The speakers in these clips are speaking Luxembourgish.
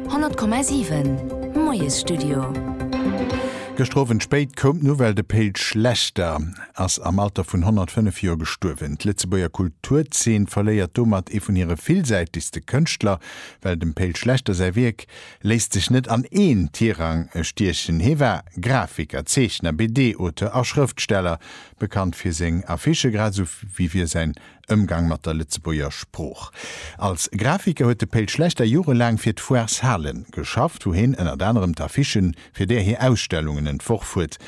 100,7 Moiesstudio. Gëschter Owend spéit koum d'Nouvelle, de Pe'l Schlechter ass am Alter vun 105 Joer gestuerwen. D'Lëtzebuerger Kulturzeen verléiert domat ee vun hire villsäitegste Kënschtler, well dem Pe'l Schlechter säi Wierk léisst sech net an een Tirang stiechen. Hie war Grafiker, Zeechner, BD-Auteur a Schrëftsteller, bekannt fir seng Affichë, grad esou wéi fir säin Ëmgang mat der Lëtzebuerger Sprooch. Als Grafiker huet de Pe'l Schlechter jorelaang fir d'Foires Halen geschafft, wou heen ënnert anerem d'Affichen fir där hir Ausstellungen entworf huet.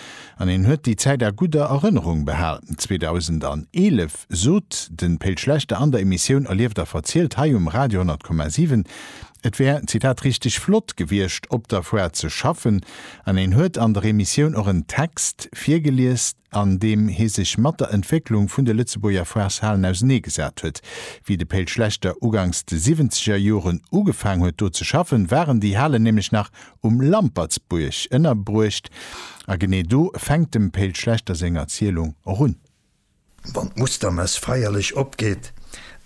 An heen huet déi Zäit a gudder Erënnerung behal. 2011 sot de Pe'l Schlechter an der Emissioun Erlieft a verzielt hei um Radio 100,7, et wär, Zitat, richteg flott gewiescht, op der Foire ze schaffen. An heen huet an der Emissioun och en Text virgelies, an deem hie sech mat der Entwécklung vun de Lëtzebuerger Foireshalen auseneegesat huet. Wéi de Pe'l Schlechter ugangs de siwwenzeger Joren ugefaang huet do ze schaffen, waren déi Halen nämlech nach um Lampertsbuerg ënnerbruecht. A genee do fänkt dem Pe'l Schlechter seng Erzielung och un. Wann d'Mustermess feierlech opgeet,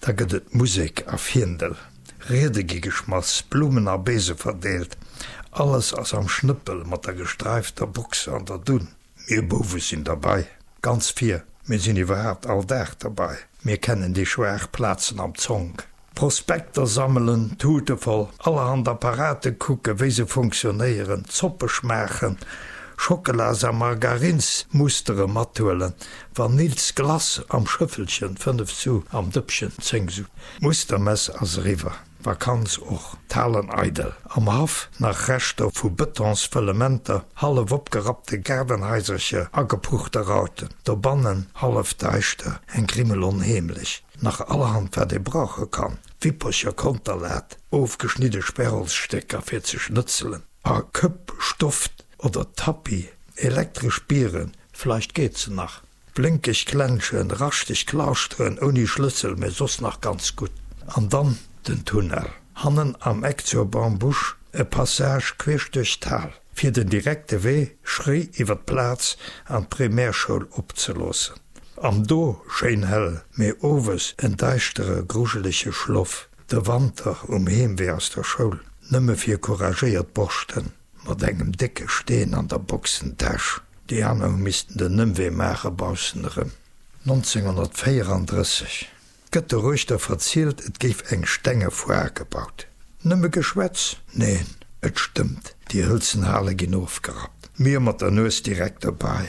da gëtt et Musek a Fiendel, Riede gi geschmass, Blumen a Beese verdeelt, alles ass am Schnëppel mat der gestreifter Box an der Dunn. Mir Bouwe sinn derbei, ganz vir. Mir sinn iwwerhaapt all Dag derbei. Mir kennen déi schwaach Plazen am Zonk. Prospekter sammelen, d'Tute voll allerhand Apparate kucken, wéi se funktionéieren, d'Zoppe schmaachen, Schockelas a Margarinsmustere mathuelen, Vanillsglace am Schëffelchen, fënnef Su am Dëppchen, zéng Su. D'Mustermess ass eriwwer. Vakanz och. D'Halen eidel, am Haff nach Reschter vu Betonsfëllementer, hallef opgerappte Gaardenhaisercher, agepuchte Rauten, dobannen hallef daischter, eng Grimmel onheemlech, nach allerhand wat ee brauche kann, Wippercher, Konterlat, ofgeschnidde Sperrholzstécker fir ze schnëtzelen, a Këpp, Stoft oder Tapis, elektresch Bieren, vleicht geet se nach. Blénkeg Glänschen, raschteg Klauschteren ouni Schlëssel, mee soss nach ganz gutt. An dann den Tunnel. Hannen am Eck zur Bambusch e Passage queesch duerch d'Hal, fir den direkte Wee schréi iwwer d'Plaz an d'Primärschoul opzeloossen. Am do schéin hell, mee owes en deischtere grujelege Schloff. De Wanter um Heemwee aus der Schoul, nëmme fir couragéiert Borschten. Mat engem décke Steen an der Boxentäsch. Déi aner hu missten den Ëmwee maache baussen erëm. 1934 gëtt de Reuchter verzielt, et géif eng stenge Foire gebaut. Nëmme Geschwätz? Neen, et stëmmt, déi hëlzen Hale ginn ofgerappt. Mir mat der Nues direkt dobäi.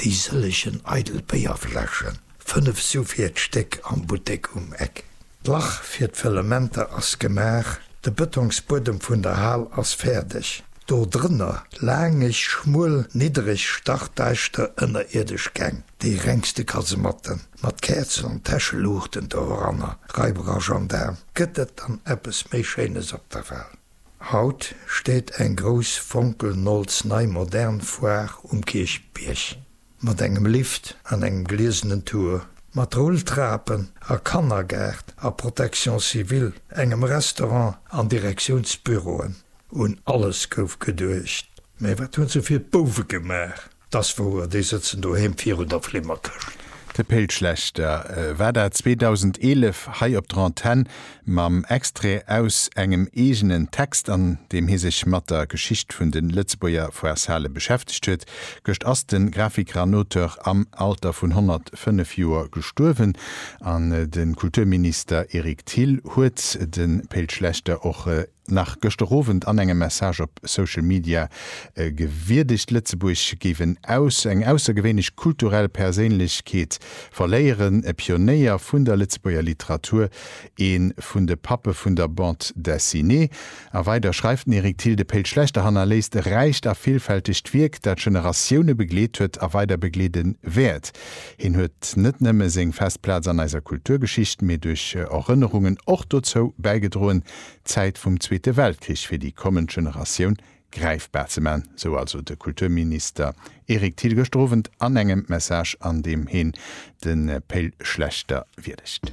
Déi sëllegen eidel Béierfläschen, fënnef Su fir d'Stéck am Buttek um Eck. D'Lach fir d'Fëllementer ass gemaach, de Bëtongsbuedem vun der Hal ass fäerdeg. Do drënner laangeg, schmuel, niddereg, stachdaischter ënnerierdesch Gäng, déi rengste Kasematten, mat Käerzen an Täscheluuchten doranner. Raiberer Gendaarm, gëtt et dann eppes méi Schéines op der Hal? Haut steet eng grouss fonkelnolz nei modern Foire um Kierchbierg, mat engem Lift an engem gliesenen Tour, mat Rulltrapen a Kannergaart a Protection civile, engem Restaurant an Direktiounsbüroen. Un alles gouf geduecht, mä wat hunn se fir d'Bouwe gemaach? Dass wouer, déi sëtzen doheem virun der Flimmerkëscht. De Péit Schlechter war dat 2011 hei op der Antenn mam Extrait aus engem eegenen Text, an deem hie sech mat der Geschicht vun de Lëtzebuerger Foireshale beschäftegt huet. Gëscht ass de Grafiker an Auteur am Alter vun 105 Joer gestuerwen, an de Kulturminister Eric Thill huet de Péit Schlechter och nach gëschter Owend an engem Message op Social Media gewierdegt, Lëtzebuerg géif en aus eng aussergewéinlech kulturell Perséinlechkeet verléieren, e Pionéier vun der Lëtzebuerger Literatur, ee vun de Pappe vun der Bande Dessinée. A weider schreift den Eric Thill, De Péll Schlechter hannerléisst e räicht a villfältegt Wierk, dat Generatioune begleet huet a weider begleede wäert. Hien huet net nëmme seng fest Plaz an eiser Kulturgeschicht, mee duerch Erënnerungen och dozou bäigedroen, d'Zäit vum Zweete Weltkrich fir déi kommend Generatioun gräifbar ze man, sou also de Kulturminister Eric Thill gëschter Owend an engem Message, an deem heen de Pe'l Schlechter wierdegt.